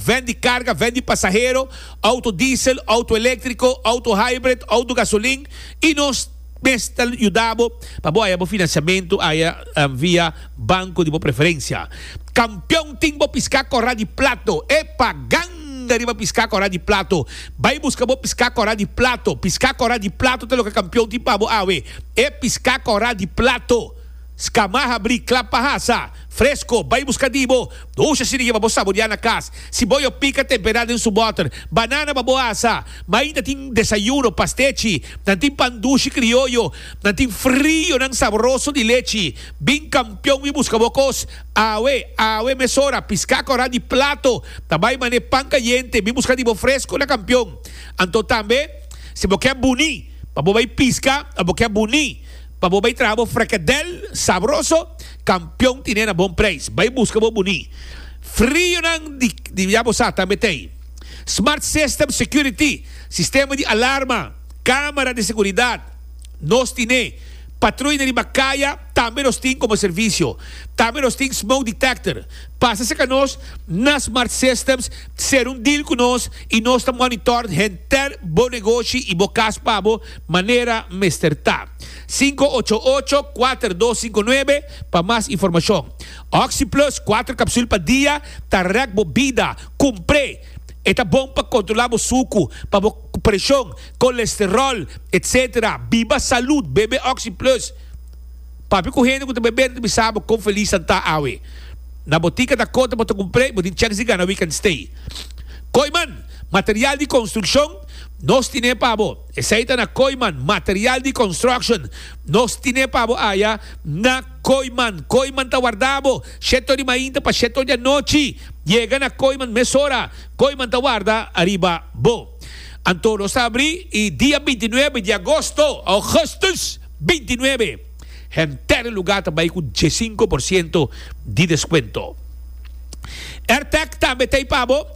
Ven di karga, ven di pasahero, outo diesel, outo eléktriko, outo hybrid, outo gasolin i nos mes ta yuda bo pa bo haya bo finansiamentu haya via banko di bo preferensia. Kampion tin bo piská kòrá di plato! Epa! Ganga riba piská kòrá di plato! Bai buska bo piská kòrá di plato! Piská kòrá di plato ta loke kampion tin pa bo awe! E piská kòrá di plato! Scamá habrí klap pa hasa, fresko, bai buska dibo, dusha si riba bo saboriá na kas. Si bo yo pika temperá den su bòter, banana pa bo hasa. Mainta tin desayuno, pastechi, nan tin pan dushi krioyo, nan tin frionan sabroso di lechi. Bin kampion wi buska bo kos awe, awe mesora, piská kòrá di plato ta bai man'é pan kayente, bin buska dibo fresko na kampion. Anto tambe, si bo kè buní pa bo bai piska, a bo kè buní. Pa bo bay traha bo frekadel sabroso kampion tine na bon preis bay buska bo buní frionan di ya bo sa tambe t'ey smart system security sistema di alarma kamera di seguridat nos tine patruina riba kaya tambe nos tin komo servisio tambe nos tin smoke detector pasa serka nos na smart systems ser un deal ku nos i nos ta monitor henter bo negoshi i bo kas pa bo manera mester ta. Sinku ocho ocho, kuater dos sinku nuebe pa mas informashon. Oxyplus kuater kapsul pa dia ta rèk bo bida. Kumpr'é! E ta bon pa kontrolá bo suku, pa bo preshon, kolesteròl, etc. Biba salud, bebe Oxyplus. Papia ku hende ku ta bebé, nan ta bisa bo kon felis nan ta awe. Na botika ta kota bo ta kumpr'é, bo tin chèks di gana we can stay. Koiman, material di konstrukshon, nos tine pa bo. Esei ta na Koiman, material di construction. Nos tine pa bo aya na Koiman. Koiman ta warda bo shete or di mainta pa shete or di anochi. Yega na Koiman mesora. Koiman ta warda ariba bo. Anto nos ta abri y dia binti nuebe di agosto, augustus binti nuebe, henter lugar ta bay cu diesinco por ciento di descuento. Airtech tambe ta ey pa bo.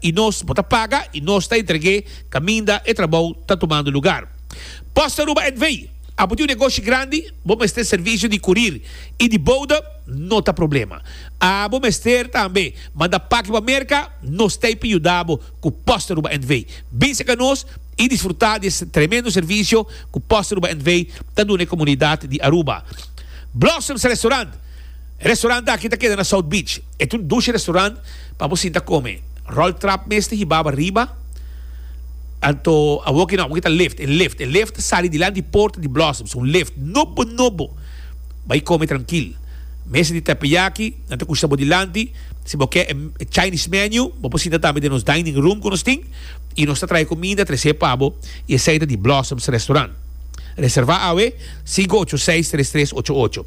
y nos bo ta paga y nos ta entregue caminda e trabou ta tumando lugar. Post Aruba NV. A bo tin un negoshi grandi, bo mester servicio di curir y di bouda? No ta problema. A bo mester tambe manda paki pa Merca? Nos t'ey pa yuda bo cu Post Aruba NV. Binse ca nos y disfruta di e tremendo servicio cu Post Aruba NV. ta duna e comunidad di Aruba. Blossoms Restaurant. E restaurant aki ta keda na South Beach. E ta un dushi restaurant pa bo sinta kome. Rolf Trap mes ta hibaba riba, anto awoki no, awoki ta lift, e lift. E lift ta sali dilanti di porta di Blossoms, un lift nobo nobo. Bai kome trankil. Mesa di teppeyaki nan ta kushta bo dilanti. Si bo ke e Chinese menu, bo por sinta tambe den nos dining room ku nos tin i nos ta trae kuminda tres'é pa bo. I esei ta di Blossoms Restaurant. Reserva awe, sinku ocho seis tres tres ocho ocho.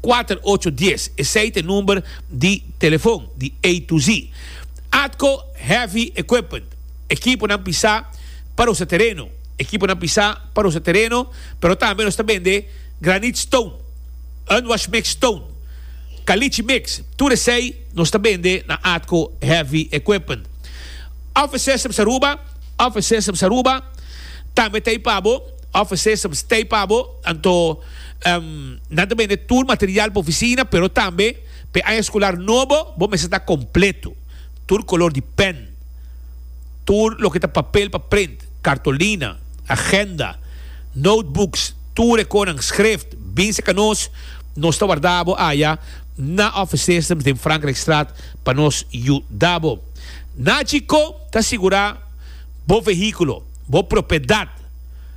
Kuater ocho dies, esei ta e number di telefon di A to Z. Atco Heavy Equipment, ekiponan pisá pa rosa tereno, ekiponan pisá pa rosa tereno, pero tambe nos ta bende granit stone, unwash mix stone, caliche mix, tur esei nos ta bende na Atco Heavy Equipment. Office Systems Aruba, Office Systems Aruba tambe ta ei pa bo, Office Systems ta ei pa bo, anto. Nan ta bende tur material pa oficina, pero tambe p'e aña escolar nobo bo mester ta completo, tur color di pen, tur loke ta papel pa print, cartolina, agenda, notebooks, tur e conan schrift, binse ca nos, nos ta warda bo aña na Office Systems den Frankrijkstraat pa nos yu da bo. Nachi con ta sigura bo vehiculo, bo propiedad.